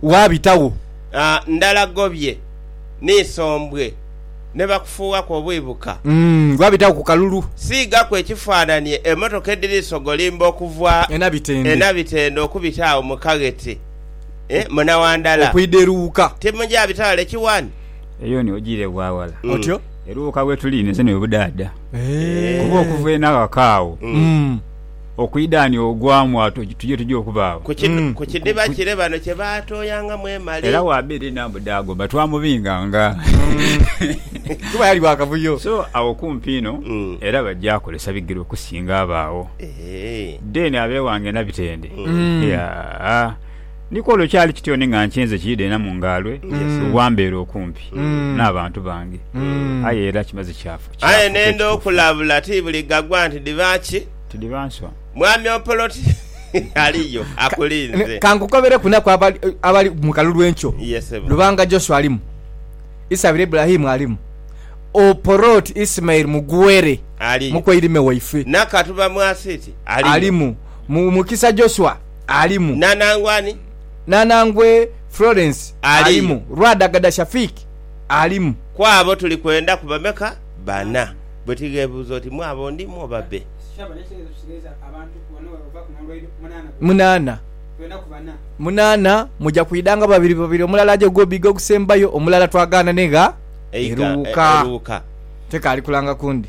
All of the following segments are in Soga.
waabitagho. Ndhalagobye ni isombwe, ni bakufuughaku obwibuka. Waabitagho ku kalulu. Siigaku ekifaananie emotoka edhiri sogolimba okuva e Nabitende okubita agho mu kaghete muna Wandala. Okwidha e Luuka. Timuja bita ghale kiwani. Eyo ni ojiire bwa ghala. Otyo. E Luuka wetuli inhese n'obudhaadha. Kuba okuva eno aghaka agho. Okwidhaanhia ogwa mwaato tuje tuje okubaagho. Ku kidiba kire bano kye baatooyangamu emale. Era wa biri naamu dhaagomba twamubinganga. Kuba yali wa kavuyo. So agho kumpi inho era bajja kozesa bigere okusinga abo agho. Then abeewange na bitende. Yaa. Ni kw'olwo kyali kityo ni nga nkyenze kiidhena mu ngaalwe bwa mbeera okumpi n'abantu bange. Aye era kimaze kyafuka ekituufu. Aye nenda okulabula, ti buli gagwa nti dhiba ki? Ti dhiba nswa. Mwami Opoloti aliyo akulinze. Ka nkukobereku naku abali mu kalulu enkyo. Ye ssebo. Lubanga Joshua alimu. Isabira Ibrahim alimu. Opoloti Ismail Mugwere, Aliyo. mukweirime waife. Nakatu Bamwasiiti aliyo. Alimu. Mukisa Joshua. alimu. Nanangwe ani? Nanangwe Florence alimu. Lwadagada Shafiq alimu. Ku abo tuli kwenda ku bameka? Bana. Bwe tighebuuza oti, Mu abo ndimu oba be? Munaana. Munaana. Muja kwidanga babiri babiri, omulala aje ogw'obiiga ogusembayo, omulala twagaanane gha Eruwuka. Tekaali kulanga kundi.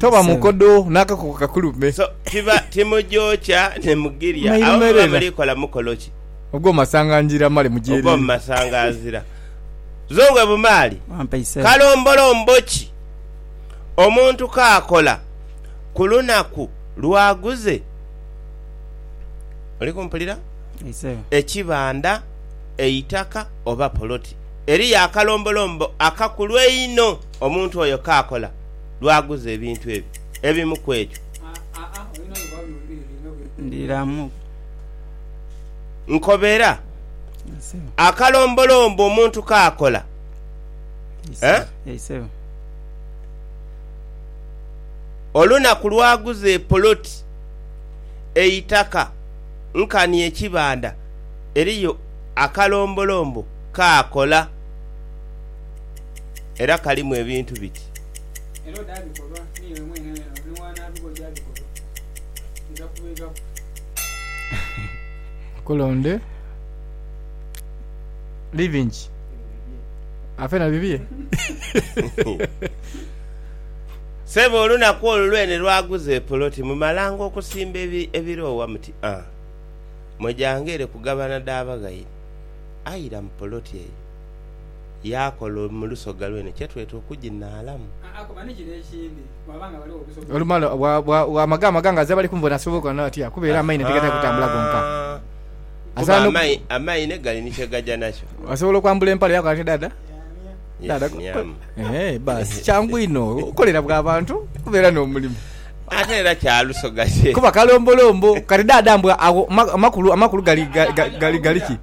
Toba mukodo n'akakoko kakulume. So tiba timugyokya ne mugirya. Awo muba Mairumerera. muli kola mukolo ki? Ogw'omasangangira male mugyereere. Ogw'omumasanganzira. Zongwe Bumaali, Wampa isebo. Kalombolombo ki omuntu k'akola ku lunaku lw'aguze, oli kumpulira? Isebo. ekibanda, eitaka oba poloti? Eriyo akalombolombo akakulu einho omuntu oyo k'akola. lw'aguza ebintu ebyo. Ebimu ku ebyo. Nkobera, akalombolombo omuntu k'akola. Olunaku lw'aguza epoloti, eitaka nkani ekibanda, eriyo akalombolombo k'akola. era kalimu ebintu biti. Era odaabikolwa n'iwe mwene wena ni waanaabigho gy'abikolwa, nja kubeeghaku. Nkulonde bibingi afe na bibye. Sebo olunaku olwo lwene lwaguza epoloti mu Malango okusimba ebiroowa muti a mwe gyange ere kugabana dha baghaire aira mu poloti eyo. yaakola mu lusoga lwene kye tweta okuginaalamu. Olumala bw'amaga amagangazi abali kunvona asobola okola nawe atya kuba era amaine tigatera kutambula gonka. Kuba amaine gali ni kye gaja nakyo. Asobola okwambula empale yaakola atya dhaadha? Yeenyaamya. Baasi kyangu inho okolera bwa bantu kuba era n'omulimu. Ate era kya lusoga kye. Kuba kalombolombo. Kati dhaadha mbu agho amakulu gali ki?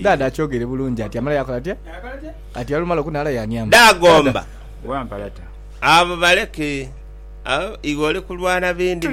Dada akyogere bulungi ati amala yakola atya ati olumala okunhala yaniamba. Dada.